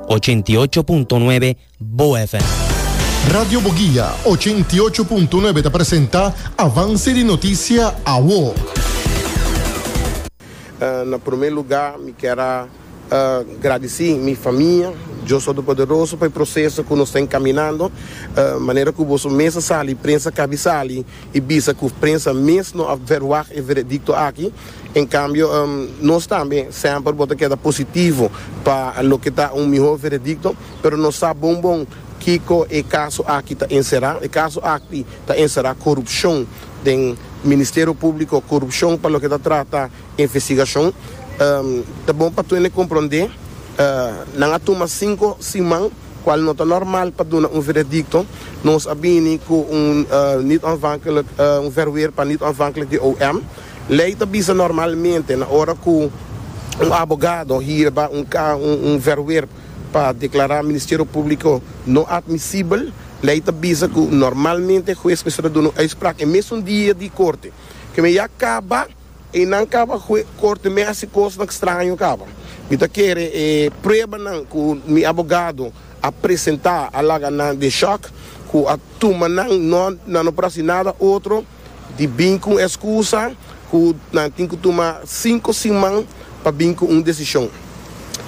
Ochenta i ocho punto nuebe Bo FM. Radio Boguia ochenta i ocho punto nuebe ta presenta Avance di Noticia Awo. Na prome luga mi kier a gradisi mi famia Dios Todopoderoso pa e proseso ku nos ta enkaminando. Manera ku boso mes a sali, prensa kabi sali. I bisa ku prensa mes no a verwagt e veredikto aki. En kambio, nos tambe semper bo ta keda positivo pa loke ta un mihó veredikto, pero no sa bon bon kiko e kaso aki ta enserá. E kaso aki ta enserá korupshon den Ministerio Públiko, korupshon pa loke ta trata investigashon. Ta bon pa Twene komprondé nan a tuma sinku siman. Cual no ta normal pa duna un veredicto, nos a bini cu un niet onafhankelijk, un verweer pa niet onafhankelijk di OM. Ley ta bisa normalmente na ora cu un abogado hierba un un verweer pa declara Ministerio Publico no admisibel, ley ta bisa cu normalmente hues mester a duna un uitspraak e mesun dia di corte. Keme ya caba. E nan kaba ku e korte mi a hasi kosnan kstraño kaba. Mi ta kere e pruebanan ku mi abogado a presentá a laga nan den shòk ku a tuma nan no nan no por hasi nada otro di bin ku un eskusa ku nan tin ku tuma sinku siman pa bin ku un desishon.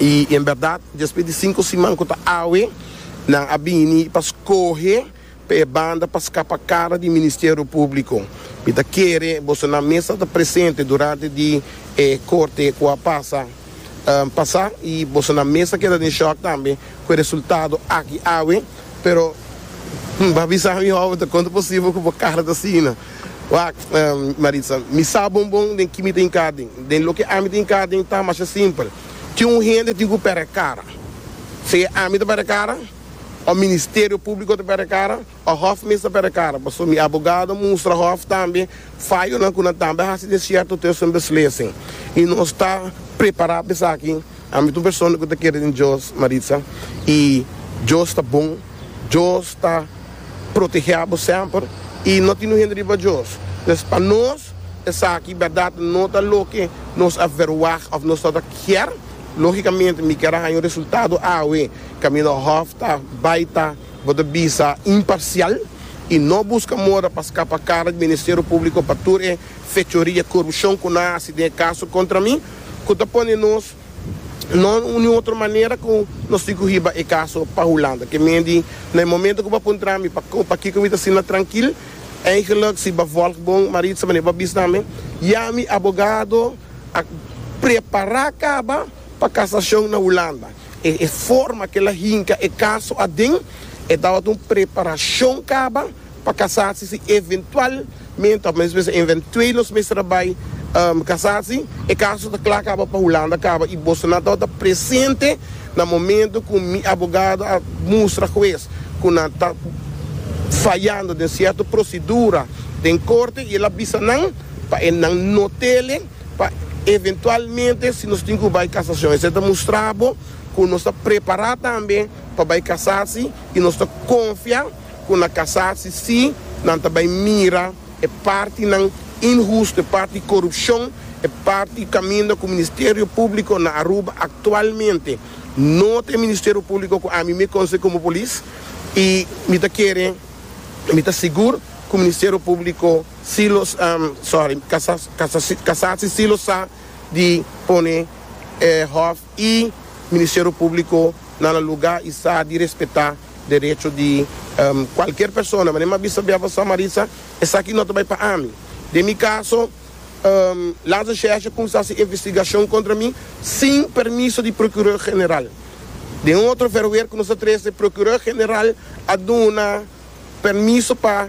I en bèrdat despues di sinku siman ku ta awe nan a bini pa skohe. Pa e banda pa scapa cara di Ministerio Publico, mi ta kere boso nan mes a ta presente durante di e corte cu a pasa pasa y boso nan mes a keda den shock tambe cu e resultado aki awe, pero bo a bisa mi ho bo con ta posible cu bo cara ta asina? Wak, Maritza, mi sa bon bon den ki mi ta hinca den, den loke ami ta hinca den ta masha simpel, tin un hende tin cu pera e cara, si ami ta pera e cara. O Ministerio Públiko ta perde kara o hòf mes ta perde kara pasobra mi abogado a mustra hòf tambe fayonan ku nan tambe a hasi den sierto tiosen di beslesen i nos ta prepará pa esaki. Ami ta un persona ku ta kere den Dios, Maritza, i Dios ta bon. Dios ta protegé abo semper i no tin un hende riba Dios. Entonces pa nos esaki bèrdat no ta loke nos a verwagt òf nos ta kier Logicamente mi kera haña un resultado awe, Camino Hof ta bai ta, bo ta bisa, imparcial y no busca moda pa scapa cara di Ministerio Publico pa tur e fechoria y corupcion cu nan haci den e caso contra mi, cu ta pone nos no ni otro manera cu nos tin cu hiba e caso pa Hulanda. Ke men di, na e momento cu bo a puntra mi pa co, pakico mi ta asina trankil, eigenlijk si bo a volg bon Maritza, wanneer bo a bis na mi, ya mi abogado, A prepará kaba pa kasashon na Hulanda. E forma ku el a hinka e kaso aden e tabata un preparashon kaba pa kasasi si eventualmente òf mester bisa eventuelos mester a bai kasasi. E kaso ta kla kaba pa Hulanda kaba i boso nan tabata presente na momento ku mi abogado a mustra hues ku nan ta fayando den sierto prosedura den korte i el a bisa nan. Pa e nan no tele, pa eventualmente si nos tin cu bay casacion esey ta mustra bo cu nos ta prepara tambe pa bay casa si y nos ta confia cu na casa si si nan ta bay mira e partinan inhusto, e parti corupcion, e parti caminda cu Ministerio Publico na Aruba actualmente no ta e Ministerio Publico cu ami mi conoce como Polis y mi ta kere y mi ta sigur cu Ministerio Publico. Si lo sorry, kasa si si lo sa di pone e hof i ministerio publico na la luga i sa di respeta derecho di cualkier persona. Mane m'a bisa bia pa Samarisa, esaki no ta bai pa ami. Den mi caso, Laza Sheshe cuminsa si investigacion contra mi sin permiso di Procureur General. Den un otro verweer cu nos a trece, Procureur General a duna permiso pa.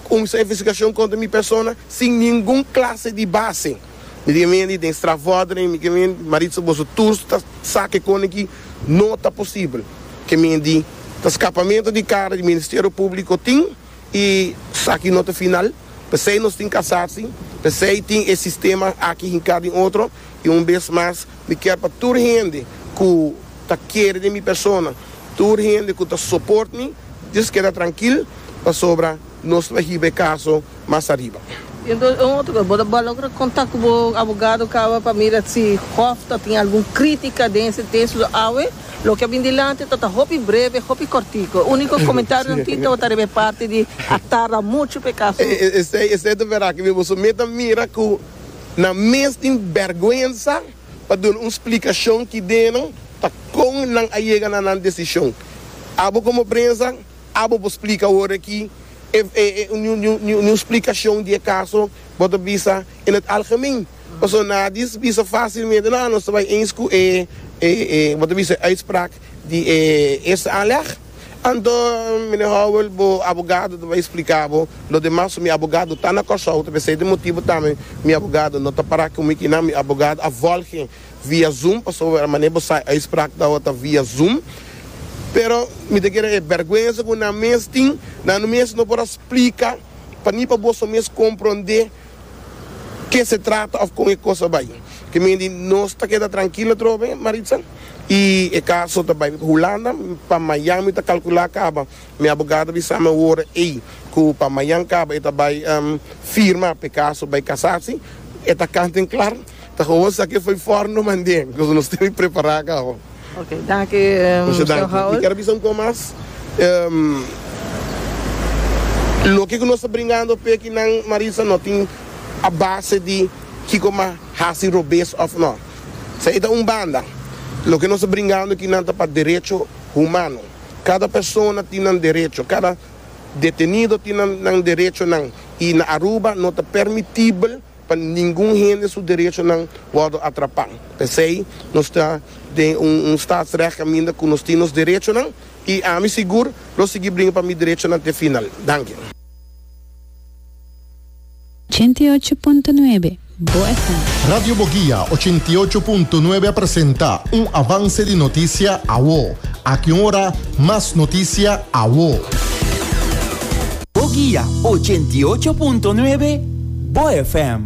Kumsa e vestigacion contra mi persona sin ningun clase di base. Mi di men di den strafvordering mi ke men di Maritza boso tur ta sa kekone ki no ta posibel. Ke men di ta scapamento di cara di Ministerio Publico tin y saki no ta final. Pesey nos tin casasi, pesey tin e sistema aki hinca den otro y un bes mas. Mi kier pa tur hende ku ta kere den mi persona, tur hende ku ta soport mi, djis keda trankil, pasobra nos lo a hiba e kaso mas ariba. I entonces un otro kos, bo ta logra kontak ku bo abogado kaba pa mira si hof ta tin algun kritika den ese tesis òf awe loke a bin dilanti ta ta hopi breve, hopi kòrtiku. Úniko komentario nan tin tabata riba e parti di a tarda muchu pa e kaso. Esei, esei ta verá ke mi bo so meta mira ku. Nan mes tin bèrgwensa pa duna un splikashon ki deno ta kon nan a yega na nan desishon. Abo komo prensa, abo por splika ora aki niun splikashon di e kaso bo ta bisa in het algemeen. Pasobra nadie bisa fácilmente, no, anos ta bai eens ku e, bo ta bisa e uitspraak. di e eerste aanleg. Anto Meneer Howell bo abogado ta bay explica bo lo demas so mi abogado ta na Corsou ta p'esey ta motibo tambe mi abogado no ta para cu mi kinan mi abogado a volge via zoom pasobra mane bo sa uitspraak ta ta via zoom pero mi ta kere e berguenza cu nan mes tin nan no mes no por a splica pa ni pa boso mes compronde ke se trata of kon e kos a bai. Te men di nos ta keda trankil atrobe, Maritza, i e kaso ta bai Hulanda, pa mayan mi ta kalkula kaba. Mi abogado a bisa mi awor ei ku pa mayan kaba e ta bai firma pa e kaso bai kasasi. E ta kant den klar. Ta howo sa ke foi for no mande koz nos tene prepara ka ho. Ok, danki Mr. Howell. Mi kier bisa un poko mas. Loke ku nos ta bringando p'e kinan Marisa no tin a base di kiko m'a hasi robes òf no. Sa e ta un banda. Loke nos ta bringando kinan ta pa derecho humano. Kada persona tin nan derecho, kada detenido tin nan derechonan i na Aruba no ta permitibel. Pa ningun hende su derechonan wòrdu atrapá. P'esei nos ta den un staatsrecht kaminda ku nos tin nos derechonan i ami sigur lo sigui bringa pa mi derechonan te final. Danki. Ochenta i ocho punto nuebe, Bo FM. Radio Boguia ochenta i ocho punto nuebe a presenta un avance di noticia awo. Aki un ora mas noticia awo. Bo guia ochenta y ocho punto nuebe, Bo FM.